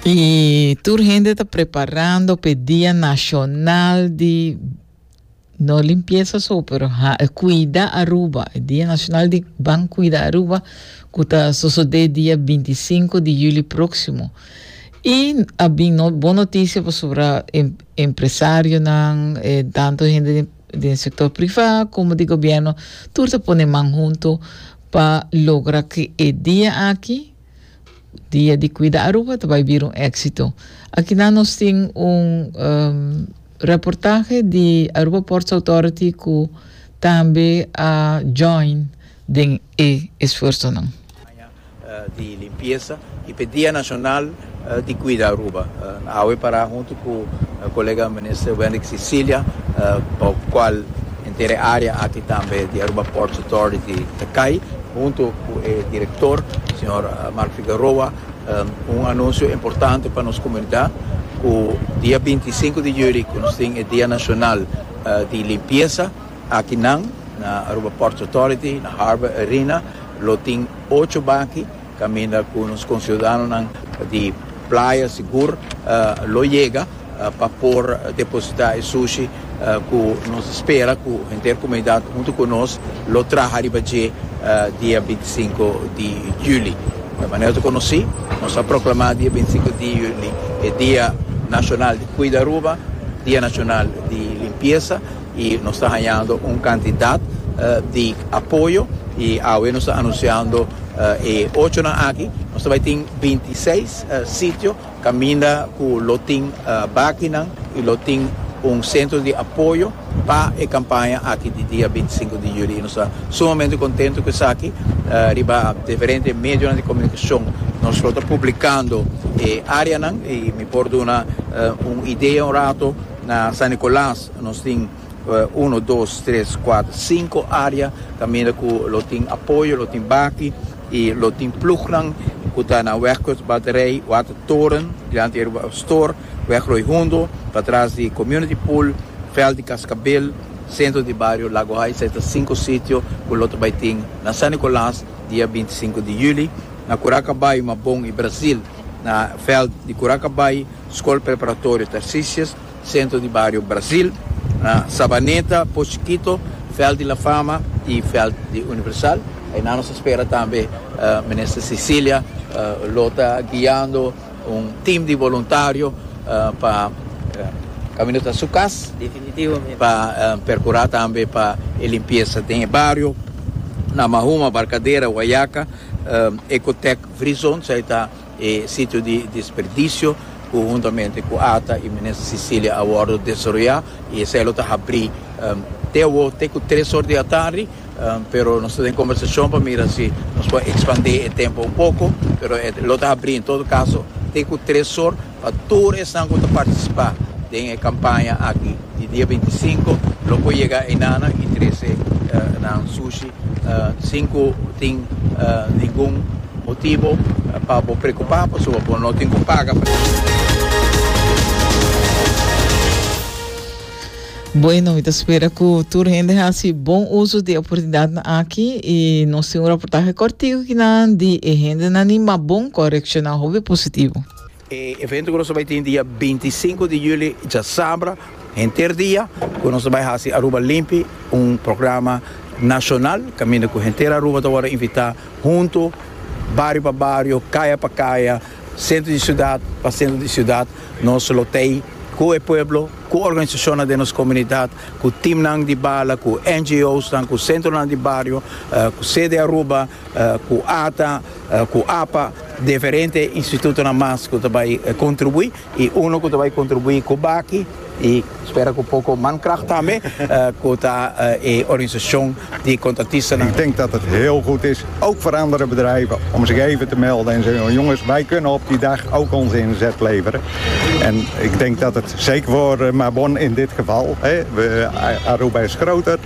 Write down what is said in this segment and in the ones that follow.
Y tur hende ta preparando p'e Dia Nacional di no limpieza so, pero ha, cuida Aruba, e Dia Nacional di Ban Cuida Aruba, cu ta sosode dia 25 di juli proximo. Y a bin no, bon noticia pasobra em, empresarionan, eh, tanto hende den, den sector priva como di gobierno, tur ta pone man hunto pa logra cu e dia aki, Dia di Cuida Aruba ta bay bira un éxito. Akinan nos tin un reportahe di Aruba Ports Authority cu tambe a join den e esfuersonan. Campaña di limpieza y p'e Dia Nacional di Cuida Aruba. Nan awe para hunto cu colega Minister Wenrick Sicilia pa cual entera e área aki tambe di Aruba Ports Authority ta cay. Hunto cu e director, señor Mark Figueroa, un anuncio importante pa nos comunidad, cu dia binti i sinku di juli cu nos tin e Dia Nacional di Limpieza, aki nan na Aruba Ports Authority, na Harbor Arena, lo tin ocho baki, Caminda cu nos conciudadanonan di Playa sigur lo yega pa por deposita e sushi cu nos spera cu henter comunidad hunto cu nos lo traha riba dje dia binti i sinku di juli. Manera ta conoci, nos a proclama dia binti i sinku di juli e Dia Nacional di Cuida Aruba, Dia Nacional di Limpiesa. y nos ta hañando un cantidad di apoyo y awe nos ta anunciando e ochonan aki nos ta bay tin binti i seis sitio caminda cu lo tin bakinan y lo tin un centro di apoyo pa e campaña aki di dia binti i sinku di juli y nos ta sumamente contento cu esaki riba diferente medionan di comunicacion nos lo ta publicando e areanan y mi por duna un idea un rato na San Nicolas. Nos tin uno, dos, tres, kuater, sinku área kaminda ku lo tin apoyo, lo tin baki i lo tin plugnan ku ta na Wegkust Batterij, Watertoren, dilanti di Aruba Store, Weg Rooi Hundo, patras di Community Pool, Veld di Kaskabel, sentro di bario Lago Haai. Esei ta sinku sitio ku lo ta bai tin na San Nikolaas dia binti sinku di yüli, na Kurakabay, Mabon i Brazil, na veld di Kurakabay, Skol Preparatorio Tarcisius, Centro di Bario Brasil, na Sabaneta, Pozo Chiquito, Veld di La Fama y Veld di Universal. Ayina nos a spera tambe Minister Cecilia lo ta guiando un team di voluntario pa camino ta su cas pa percura tambe pa e limpieza den e bario, na Mahuma, Barcadera, Guayaca, Ecotec Vrizon. E sitio di desperdicio cu huntamente cu ata y Minister Cecilia a wordo desaroya y esey lo ta habri te awo te cu tres or di atardi pero nos ta den conversacion pa mira si nos por expande e tempo un poco pero e lo ta habri en todo caso te cu tres or pa tur esnan cu ta participa den e campaña aki di dia bintisinco lo por yega eynana y trece nan sushi. Sin cu tin ningun motibo pa bo preocupa pasobra bo no tin cu paga pa tin. Bueno, mi ta spera cu tur hende haci bon uso di e oportunidadnan aki y nos tin un raportahe cortico kinan di e hendenan ni ma bon, correcciona hopi positivo. E evento ku nos ta bai tin dia binti sinku di juli djasabra henter dia ku nos ta bai hasi Aruba Limpi, un programa nashonal kaminda ku henter Aruba ta wòrdu invitá huntu bario pa bario, kaya pa kaya, sentro di siudat pa sentro di siudat nos lo tei ku e pueblo, ku organisashonnan den nos komunidat, ku timnan di bala, ku NGOsnan, ku sentronan di bario, ku sede Aruba. ku ata ku apa diferente institutonan mas ku ta bai kontribuí i uno ku ta bai kontribuí ku baki i spera ku poko mankragt tambe ku ta e organisashon di kontratistanan. Ik denk dat het heel goed is, ook voor andere bedrijven, om zich even te melden en zeggen, jongens, wij kunnen op die dag ook onze inzet leveren. En ik denk dat het zeker voor Mabon in dit geval, hè, Aruba is groter,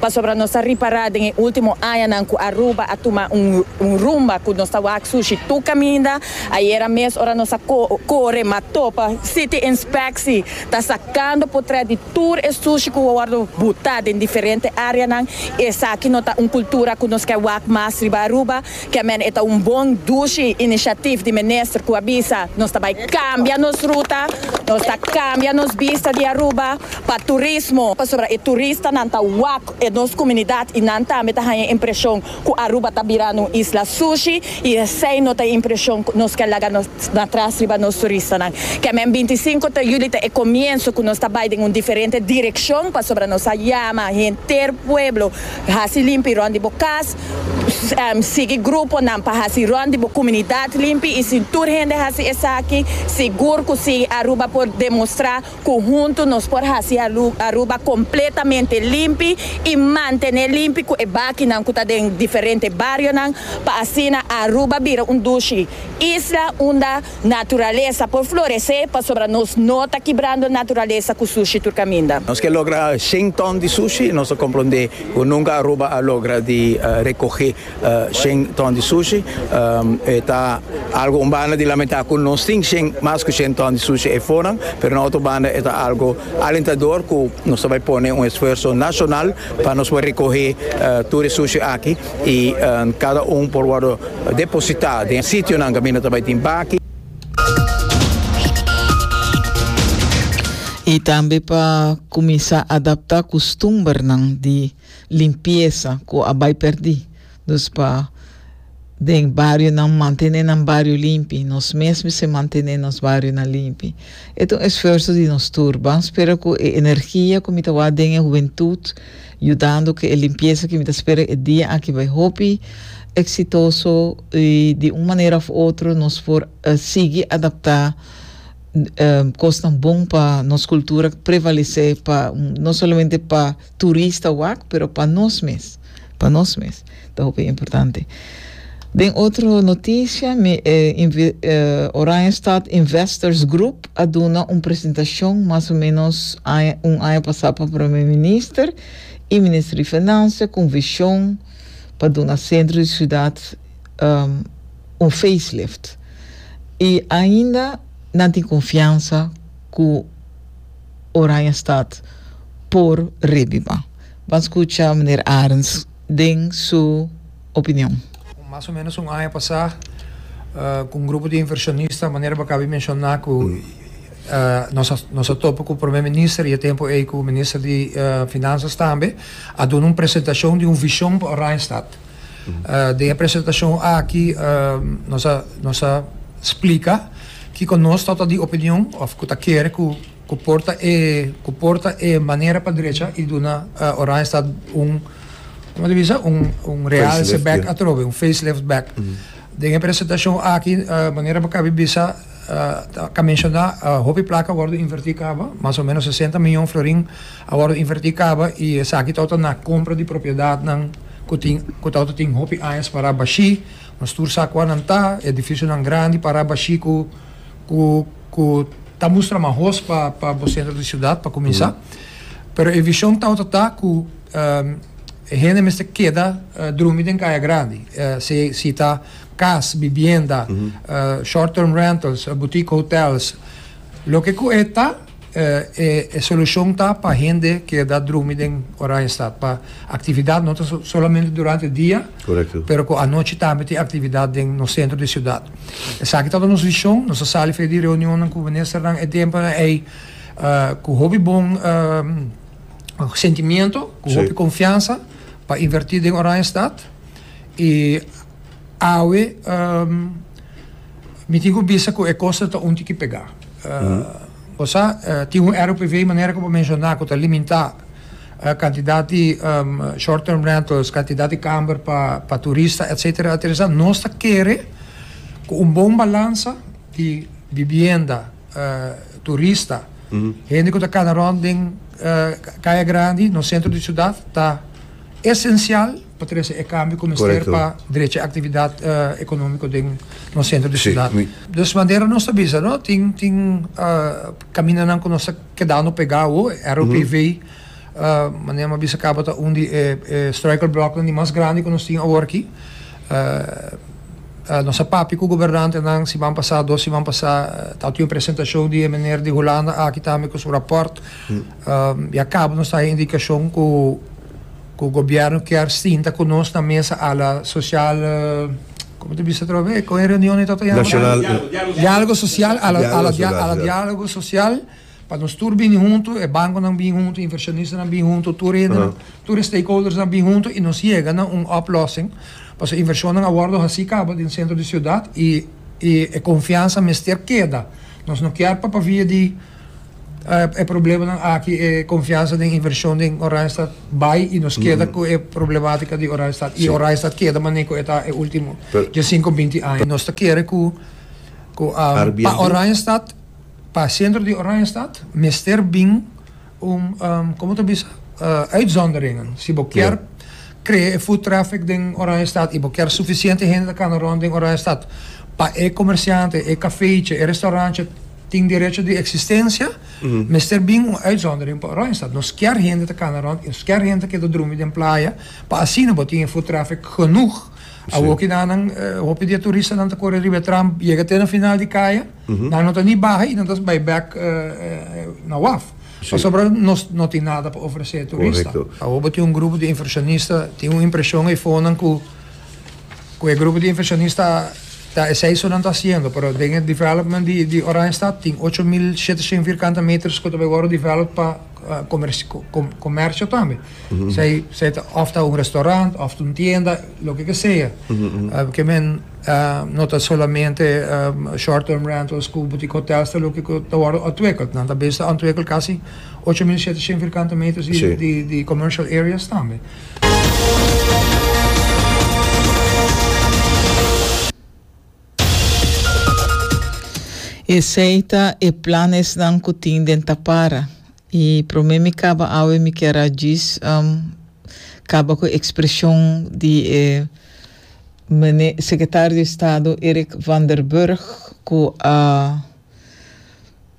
Pasobra nos ta ripará den e último añanan ku Aruba a tuma un rumba ku nos ta wak sushi tur kaminda. Ayera mes ora nos a kore ma topa City Inspeksi ta sakando potrèt di tur e sushi ku a wòrdu butá den diferente áreanan. Esaki no ta un kultura ku nos ke wak mas riba Aruba. Kemen e ta un bon dushi inishatif di minister ku a bisa, Nos ta bai kambia nos ruta, nos ta kambia nos bista di Aruba pa turismo, pasobra e turistanan ta wak e nos komunidat i nan tambe ta haña impreshon ku Aruba ta birando un isla sushi i esei no ta e impreshon ku nos ke laga nos na tras riba nos turistanan. Kemen binti sinku ta yuli ta e komienso ku nos ta bai den un diferente direkshon pasobra nos a yama henter pueblo hasi limpi rònt di bo kas, Sigui gruponan pa hasi rònt di bo kuminidad limpi i si tur hende hasi esaki, sigur ku Sigui Aruba por demostrá ku huntu nos por hasi Aruba kompletamente limpi i mantené limpi ku e bakinan ku ta den diferente barionan pa asina Aruba bira un dushi isla unda Naturalesa por floresé pasobra nos no ta kibrando naturalesa ku sushi tur kaminda. Nos ke logra shen ton di sushi i nos a komprondé ku nunka Aruba a logra di rekohé shen ton di sushi. E ta algu un banda di lamentá ku nos tin shen mas ku shen ton di sushi ei fonan, pero na otro banda e ta algu alentador ku nos ta bai pone un esfuerso nashonal pa nos por rekohé tur e sushi aki. y cada un por wordo deposita den sitionan caminda ta bay tin baki. Y tambe pa cuminsa adapta custumbernan di limpieza cu a bay perdi. Dus pa den barionan mantene nan bario limpi. Nos mes mester mantene nos barionan limpi. E ta un esfuerso di nos tur. Ban spera cu e energia cu mi ta wak den e hubentud. Yudando cu e limpieza cu mi ta spera e dia aki bai hopi exitoso y di un manera of otro nos por sigui adapta cosnan bon pa nos cultura prevalece pa no solamente pa turista wak pero pa nos mes, pa nos mes. Ta hopi importante. Den otro noticia, mi e Oranjestad Investors Group a duna un presentacion mas o menos aña, un aña pasa pa Prome Minister y Minister di Financia con vision pa duna centro di ciudad un facelift. Y ainda nan tin confiansa cu Oranjestad por rebiba. Ban scucha Meneer Arends. den su opinion. Mas o menos un aña pasá ku un grupo di inversionista, manera bo a kabe menshoná ku nos a topa ku Prome Minister i e tempu ei ku Minister di Finansas tambe, a duna un presentashon di un vishon pa Oranjestad. Den e presentashon aki nos a splika kiko nos ta di opinion òf ku ta kere ku. Cu porta e cu porta e manera pa drecha y duna Oranjestad un como ta bisa un un realce back atrobe un face lift back den e presentacion aki manera bo cabe bisa ta menciona hopi placa a wordo inverti caba mas o menos sesenta miyon florin a wordo inverti caba y esaki tawata na compra di propiedadnan cu tin cu tawata tin hopi añas para bashi nos tur sa cua nan ta edificionan grandi para bashi cu cu ku ta mustra mahos pa pa bo sentro di siudat pa kuminsá. Pero e vishon tabata ta ku e hende mester keda drumi den kaya grandi. Se si ta kas, bibienda, short term rentals, boutique hotels. Loke ku e ta e solushon ta pa hende keda drumi den Oranjestad pa aktividat no ta solamente durante dia pero ku anochi tambe tin aktividat den nos sentro di siudat. Esaki tabata nos vision, nos a sali fe'e di reunionnan ku ministernan e tempunan ei ku hopi bon sentimiento, ku hopi konfiansa pa inverti den Oranjestad i awe mi tin ku bisa ku e koster ta un tiki pega. Bo sa tin un ROPV manera ku bo menshoná ku ta limintá. Kantidat di short term rentals, kantidat di kamber pa turista etsetera etesa nos ta kere ku un bon balansa di bibienda turista hende ku ta kana rònt den kaya grandi nos sentro di siudat ta esensial pa trese e kambio ku mester pa drecha e aktividat ekonómiko den nos sentro di siudat. Des manera nos ta bisa tin kamindanan ku nos ta. kedando pegá awo. E ROPV, manera m'a bisa kaba, ta un di e struikelbloknan di mas grandi ku nos tin awor aki. Nos a papia ku gobernantenan siman pasá, dos siman pasá, ta otin un presentashon di e meneer di Hulanda aki tambe ku su rapòrt. Ya kaba nos ta haya indikashon ku gobièrnu kier sinta ku nos na mesa ala sosial. Como te bisa atrobe e cohen reunion e tato yama Nacional Dialogo social a la a la dia a la dialogo social pa nos tur bini hunto e banconan bin hunto e inversionistan bin hunto tur hendenan tur e stakeholdersnan bin hunto y nos yega na un oplossing pasobra e inversionnan a wordo haci caba den centro di ciudad y y e confiansa mester keda nos no kier pa pa via di E problemanan aki e konfiansa den invershon den Oranjestad bai i nos keda ku e problematika di Oranjestad i Oranjestad keda manera ku e ta e ultimo den sinku binti aña. Nos ta kere ku ku pa Oranjestad pa sentro di Oranjestad mester bin un komo ta bisa uitzonderingen si bo kier Crea e foot traffic den Oranjestad y bo kier suficiente hende ta cana rond den Oranjestad pa e comerciante, e cafechi, e restaurantchi tin derecho di existencia, mester bin un uitzondering pa Oranjestad. Nos kier hende ta cana rond y nos kier hende ta keda drumi den playa pa asina bo tin e foot traffic genoeg. Awoki nan hopi di e turistanan ta core riba e tram yega te na final di caya. Nan no ta ni baha y nan ta bay bek na waf. Pasobra nos no tin nada pa ofrece turista. Awo bo tin un grupo di inversionista, tin un impresion efo nan cu cu e grupo di inversionista ta esey so nan ta haciendo, pero den e development di Oranjestad tin ocho mil shete shen vierkante meters cu ta bay worde developed pa comercio tambe. Zij, zij ta of ta un restaurant, of ta un tienda, loke ke sea. Uh, ke men uh, no ta solamente um, short-term rentals ku boutique hotels, ta loke ku ta wòrdu ontwikkeld. Nan ta bezig ta ontwikkel kasi 8.700 vierkante meters di, sí. di, di commercial areas tambe. Esei ta e planesnan ku tin den Tapara. I promé mi kaba awe mi kier a djis kaba ku e ekspreshon di e mene Sekretario di Estado Eric van der Burg ku a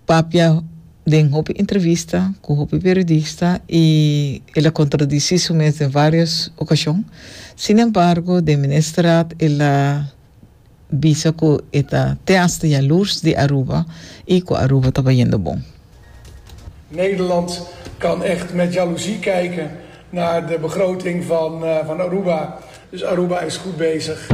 papia den hopi entrevista ku hopi periodista i el a kontradisi su mes den varios okashon. Sinembargo den Ministerraad el a. bisa cu e ta te hasta yalurs di Aruba y cu Aruba ta bayendo bon. Nederland kan echt met jaloezie kijken naar de begroting van Aruba, dus Aruba is goed bezig.